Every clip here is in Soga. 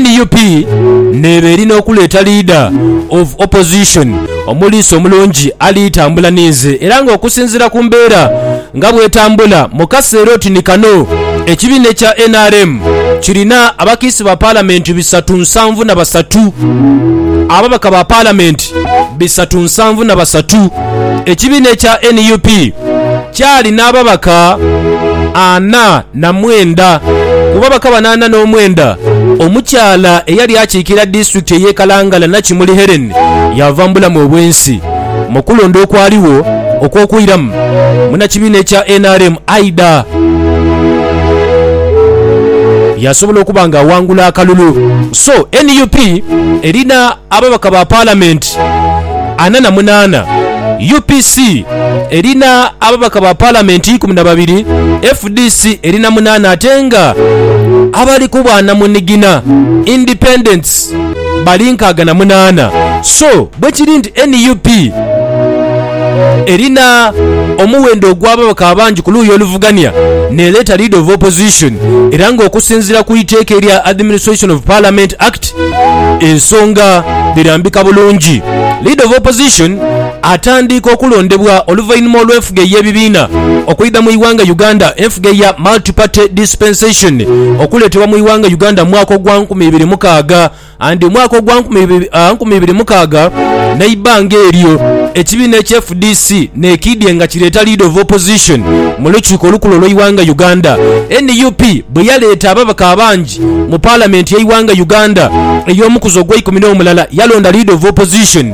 Nup neeba eri n'okuleeta Leader of Opposition omuliisa omulungi ali tambula ninze era nga okusinziira ku mbeera nga bwetambula mu kaseera oti ni kano ekibiina ekya nrm kirina abakiisi ba Palamenti bisatu nsanvu na basatu, ababaka ba Palamenti bisatu nsanvu na basatu, ekibiina ekya nup. Kyali n'ababaka ana na mwenda. Ku babaka bano ana n'omwenda, omukyala eyali akiikirira disitulikiti ey'e Kalangala Nakimuli Hellen yaava mu bulamu obw'ensi. Mu kulonda okwaligho okw'okwiramu, munnakibiina ekya nrm Aidah yasobola okuba nga awangula akalulu. So nup erina ababaka ba Palamenti ana na munaana, UPC, erina ababaka ba Palamenti ikumi na babiri, fdc erina munaana ate nga abali ku bwa namunigina, Independents, bali nkaaga na munaana. So bwe kiri nti nup erina omuwendo ogw'ababaka abangi ku luuyi oluvugania n'ereeta Leader of Opposition era ng'okusinziira ku iteeka erya Administration of Parliament Act ensonga dhirambika bulungi. Leader of Opposition atandiika okulondebwa oluvainhuma olw'enfuga ey'ebibiina okwidha mu ighanga Uganda, enfuga eya Multi Party Dispensation okuletebwa mu ighanga Uganda mu mwaka ogwa nkumi ibiri mukaaga and omwaka ogwa nkumi ibiri mukaaga neibanga eryo ekibiina ekye fdc nekiidye nga kireeta Leader of Opposition mu lukiiko olukulu olw'eighanga Uganda. Nup bweyaleeta ababaka abangi mu Parliament y'eighanga Uganda ey'omukuzi ogw'eikumi n'omulala yalonda Leader of Opposition.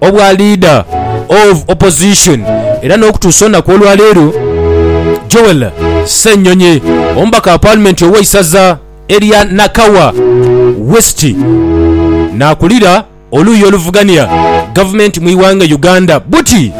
Obwa Leader of Opposition era n'okutuusa olunaku olwaleero Joel Ssenyonyi omubaka wa Paalimenti ow'eisaza erya Nakawa West n'akulira oluuyi oluvugania gavumenti mu ighanga Uganda buti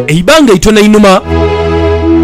eibanga itono einhuma,